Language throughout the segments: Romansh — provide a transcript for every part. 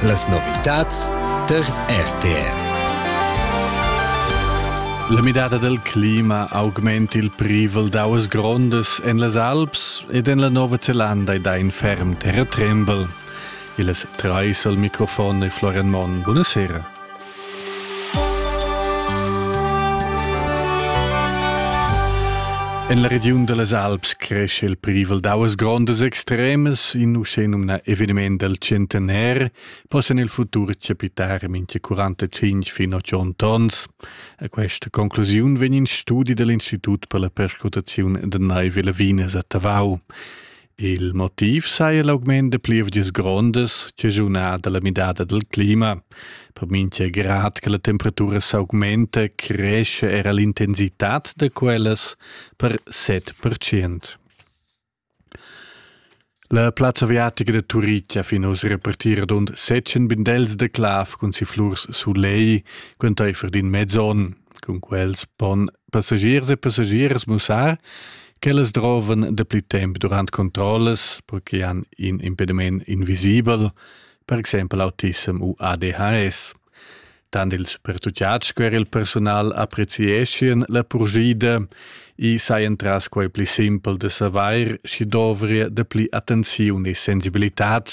Las novitads tar RTR. La midada del clima augment il privel d'auas grondas en las Alps ed en la Nova Zelanda ed ha in ferm terratrembel. Il es Treisel, Mikrofon e Florian Monn. Buonasera. En la regiun da las Alps cresce il privel d'auas grondas extremas, in uschenumnà eveniment dal centenaire, possan il futur chapitar mincha 45 fin 80 tons. A questa conclusiun vegn in studi dall'Institut per la perscrutaziun da naiv e lavinas a Tavau. Il motiv saja l'augment da plievgias grondas chaschunà da la midada dal clima. Per mintga grad che la temperatura s'augmenta, cresce era l'intensitad da quellas per 7%. La plazza aviatica da Turitg ha fin oz repartì radund 700 bindels da clav cun si flurs sulei, quantaifer d'in mez onn. cun quels pon passagiers e passagiers mussar ch'ellas drovan dapli temp durant controllas per che han in impediment invisibel, per exempel autissem u ADHS. Tant ils pertutgads sco er il personal apprezieschien la purschida e sajan tras quai pli simpel da savair, sch'i dovria dapli attenziun e sensibilitad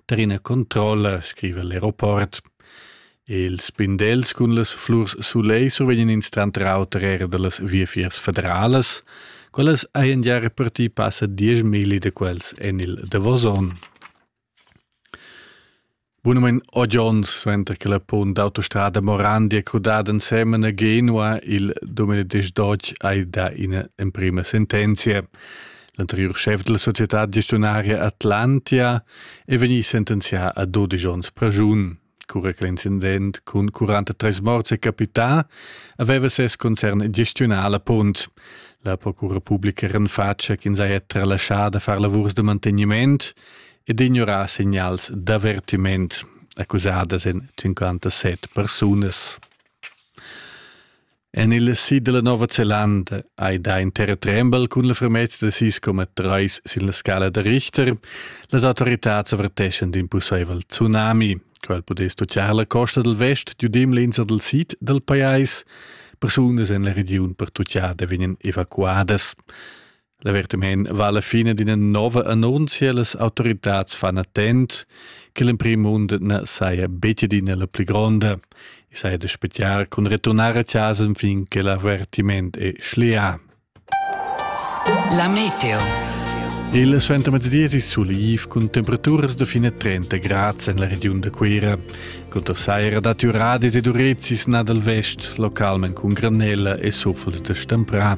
tar ina controlla, scriva l'aeroport. Ils spindels cun las flurs sulei survegnan ins tranter auter era dallas viafiers federalas. Quellas hajan gia repartì passa dieschmilli da quels en il davos onn. Bunamein otg onns suenter che la punt d'autostrada Morandia crudada ensemen a Genua il Domenides Dodge hai dà ina emprima sentenzia. L'anteriur schef della società gestionaria Atlantia è vegnì sentenzià a 12 onns pragiun. Cura che l'incident cun 43 morts è capità, aveva ses concern gestiunà la punt. La procura publica renfatscha ch'ins haja tralascià da far lavurs da mantegniment ed ignorà signals d'avertiment, accusadas en 57 persunas. En il sid dalla Nova Zelanda hai dà in terratrembel cun la fermezza da sis coma treis sin la scala da Richter. Las autoritads averteschan d'in pusseivel tsunami. Quel pudess toccare la costa dal vest giudim l'insa dal sid dal pajais. Persunas en la regiun pertuccada vegnan evacuadas. La vertemhin va la fine d'ina nova annunzia las autoritads fan attent che l'emprim mund na saja betg adina la pli gronda. I saja da spettiar cun returnar a casa fin che l'avertiment è schlià. La meteo. Il suentermezzdiesi suliv cun temperaturas da fine 30 grad en la regiun da Cuira. Conter saira datti uradis ed urezis nà dal vest, localment cun granella e sufol da stemprà.